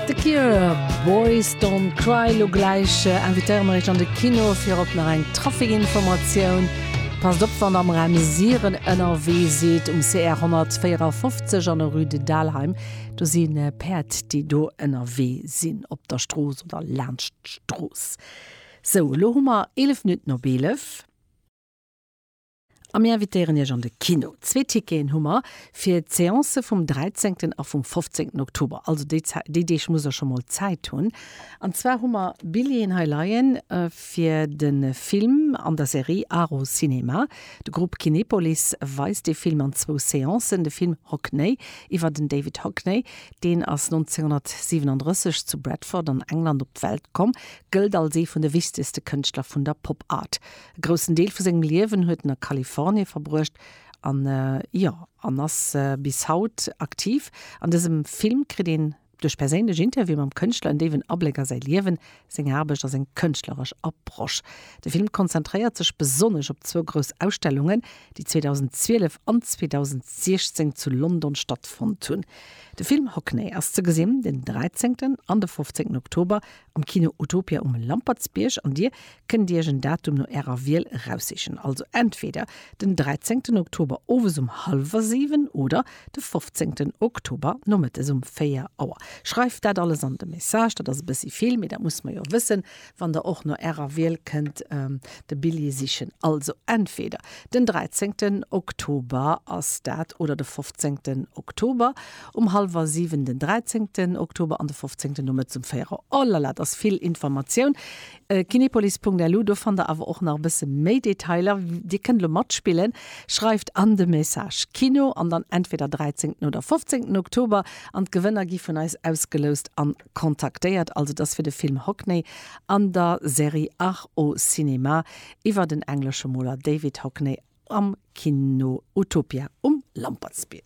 The Cure, Boys Don't Cry. Lo gläich invitéiere mer iech an de Kino fir op nach eng Trafikinformatioun. Passt op wann der am Raum Siren ënnerwee sidd, um CR 154 an der Rue de Dalheim, do si Päerd déi do ënnerwee sinn op der Strooss oder laanscht d'Strooss. Sou, lo hu mer 11 Minutten op 11. A mir invitéieren Iech an de Kino. Zwee Ticketen hu mer fir d'Seancë vum 13 a vum 15 Oktober, also déi Zäit, déi Deeg muss der scho mol Zäit hunn. An zwar hu mer Billjeeën hei leien fir de Film an der Serie Aro Cinéma. De Grupp Kinepolis weist dee Film an zwou Seancen, de Film Hockney iwwer den David Hockney, deen ass 1937 zu Bradford an England op d'Welt komm, gëllt als ee vun de wichtegste Kënschtler vun der Pop Art. E groussen Deel vu sengem Liewen huet en a Kalifornie verbruecht an jo an ass bis haut aktiv. An dësem Film kritt een duerch perséinlech Interviewen mam Kënschtler en déiwen Abléck a säi Liewen, seng Aarbecht a seng kënschtleresch Approche. De Film konzentréiert sech besonnesch op zwou grouss Ausstellungen, déi 2012 an 2016 zu London stattfonnt hunn. De Film Hockney ass ze gesinn den 13. an de 15. Oktober Am Kino Utopia um Lampertsbierg an dir kënnt iech en Datum no ärer Wiel eraussichen. Also entweder den 13 Oktober owes um hallwer 7 oder de 15 Oktober nomëttes um 4 Auer. Schreift dat alles an de Message, dat ass e bëssi vill, mee dat muss mer jo wëssen, wann der och no ärer Wiel kënnt de Billjee sichen. Also entweder den 13 Oktober ass dat oder de 15 Oktober Um hallwer 7 den 13 Oktober an de 15 nomëttes um 4 Auer. Oh la la, dat ass vill Informatioun. Kinepolis.lu, do fannt der awer och nach e bësse méi Detailer. Dir kënnt elo matspillen. Schreift an de Message Kino an dann entweder 13 oder 15 Oktober an d'Gewënner gi vun eis ausgeloust an kontaktéiert. Also et ass fir de Film Hockney an der Serie Art au cinéma iwwer den englesche Moler David Hockney am Kino Utopia um Lampertsbierg.